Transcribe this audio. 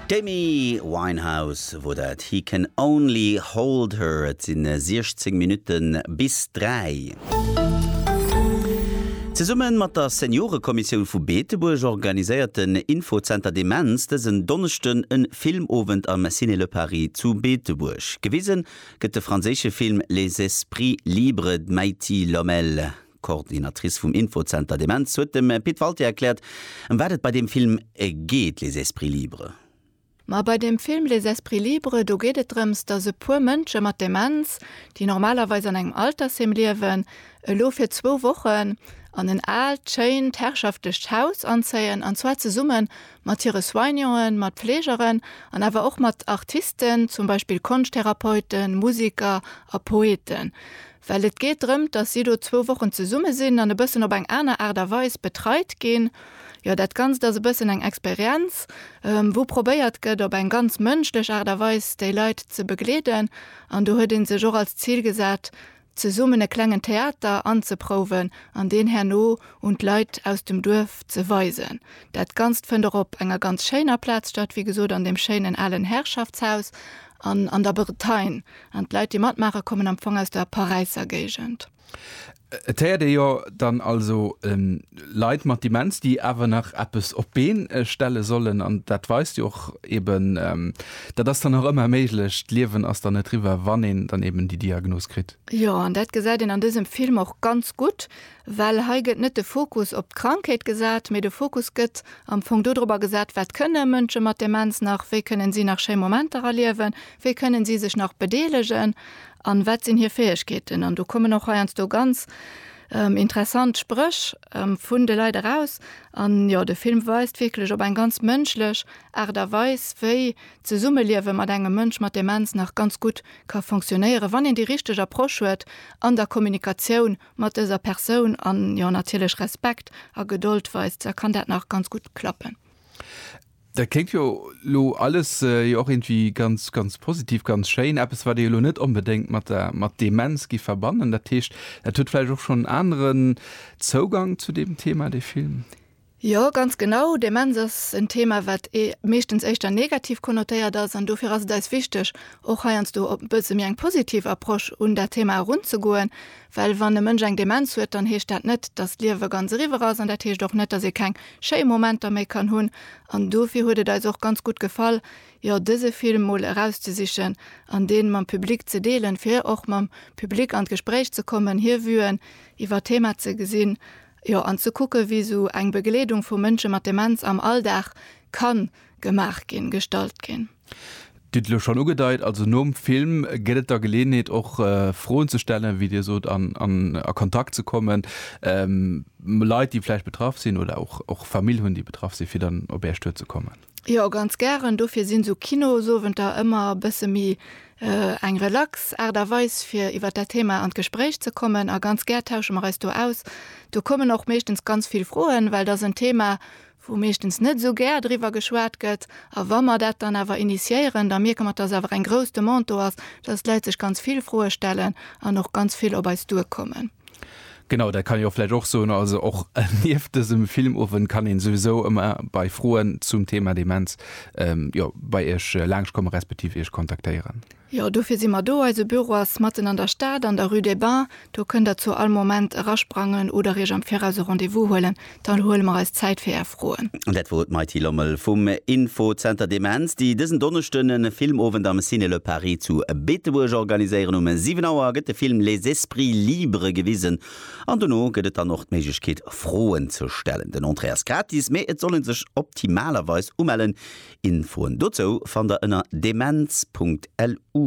D'Amy Winehouse wor dat, He can only hold her. Et sinn 16 Minutten bis 3. Zesummen mat der Seniorekommissioun vu Beetebuerg organiséiert den Infozenter Demenz dësen Donneschden en Filmowend am Ciné Le Paris zu Beetebuerg. Gewisen gëtt de franséische Film Les esprits libres d'Meity Lommel. D'Coordinatrice vum Infozenter Demenz huet dem Pit Walté erkläert, ëm wat et bei deem Film geet, Les esprits libres. Ma bei deem Film Les esprits libres, do geet et drëms, datt e puer Mënsche mat Demenz, déi normalerweis an engem Altersheem liewen, elo fir zwou Wochen an en aalt, schéint, herrschaftlecht Haus anzéien, an zwar zesumme mat hire Soignanten, mat Fleegeren an awer och mat Artisten, zum Beispill Konschttherapeuten, Musiker a Poeten. Well et geet drëmt, dass si do zwou Wochen zesumme sinn an e bëssen op eng aner Aart a Weis betreit ginn. Jo, dat Ganzt ass e bëssen eng Experienz, wou probéiert gëtt, op eng ganz mënschlech Aart a Weis déi Leit ze begleeden. An do huet ee sech och als Zil gesat, zesummen e klengen Theater anzeprouwen an deen herno un d'Leit aus dem Duerf ze weisen. Dat Ganzt fënnt och op enger ganz schéiner Plaz statt, wéi gesot an deem schéinen alen Herrschaftshaus an an der Bretagne. An d'Leit, déi matmaachen, kommen am Fong aus der Paräisser Géigend. Et héiert ee jo dann also Leit mat Demenz, déi awer nach eppes op d'Been stelle sollen. An dat weist jo och eeben, dat ass dann och ëmmer méiglech. D'Liewen ass dann net riwwer, wann een dann eeben déi Diagnos kritt. Jo, an dat gesäit een an dësem Film och ganz gutt. Well hei gëtt net de Fokus op d'Krankheet gesat, mee de Fokus gëtt am Fong dodrobber gesat, wat kënne Mënsche mat Demenz nach, wéi kënnen si nach schéi Momenter erliewen, wéi kënnen si sech nach bedeelegen an wat sinn hir Fäegkeeten. An do kommen och heiansdo ganz interessant Spréch vun de Leit eraus. An jo, de Film weist wierklech op eng ganz mënschlech Aart a Weis, wéi d'Zesummeliewe mat engem Mënsch mat Demenz nach ganz gutt ka fonctionéieren, wann een déi richteg Approche huet an der Kommunikatioun mat dëser Persoun an jo natierlech Respekt a Gedold weist, da kann dat nach ganz gutt klappen. Dat kléngt jo elo alles jo och iergendwéi ganz, ganz positiv, ganz schéin. Eppes, wat ee jo elo net onbedéngt mat der mat Demenz giff verbannen. Dat heescht, dat huet vläicht och schonn en aneren Zougang zu deem Thema, dee Film? Jo, ganz genau. Demenz ass en Thema, wat meeschtens éischter negativ konnotéiert ass. An dofir ass et eis wichteg, och heiansdo op e bësse méi eng positiv Approche un dat Thema erunzegoen. Well wann e Mënsch eng Demenz huet, dann heescht dat net, datt d'Liewe ganz eriwwer ass. An dat heescht och net, datt ee keng schéi Momenter méi kann hunn. An dofir huet et eis och ganz gutt gefall, jo dëse Film mol erauszesichen an dee mam Public ze deelen, fir och mam Public an d'Gespréich ze kommen, hir Vuen iwwer d'Thema ze gesinn Jo, an ze kucken, wéi esou eng Begleedung vu Mënsche mat Demenz am Alldag ka gemaach ginn, gestalt ginn. Dir hutt et elo schonn ugedeit, also nom Film gëtt et da Geleeënheet och Froen ze stellen, wéi Dir sot, an a Kontakt ze kommen mat Leit, déi vläicht betraff sinn oder och Famill hunn, déi betraff sinn, fir dann op Är Stued ze kommen. Jo ganz gären, dofir sinn sou Kinosowenter ëmmer e bësse méi eng relax Aart a Weis fir iwwer dat Thema an d'Gespréich ze kommen a ganz gär tausche mer eis do aus. Do kommen och meeschtens ganz vill Froen, well et ass en Thema wou meeschtens net esou gär driwwer geschwat gëtt a wa mer dat dann awer initiéieren, da mierke mer dass awer eng grouss Demande do ass, dass d'Leit sech ganz vill Froe stellen an och ganz vill op eis duerkommen. Genau, dat kann ee jo vläicht och soen. Also och nieft dësem Filmowend kann een souwisou ëmmer bei Froen zum Thema Demenz, jo, bei Iech laangschkommen, respektiv Iech kontaktéieren. Jo, dofir si mer do. Eise Büro ass matten an der Stad an der Rue des Bains. Do kënnt der zu all Moment erasprangen oder Iech am Viraus e Rendez-vous huelen. Dann huele mer eis Zäit fir är Froen. An dat wor et, d'Mighty Lommel vum Infozenter Demenz, déi dësen Donneschden e Filmowend am Ciné Le Paris zu Beetebuerg organiséieren. Um 7 Auer gëtt de Film Les esprits libres gewisen an dono gëtt et dann och d'Méiglechkeet, Froen ze stellen. Den Entrée ass gratis, mee et soll ee sech optimalerweis umellen. Infoen dozou fannt der ënner demenz.lu.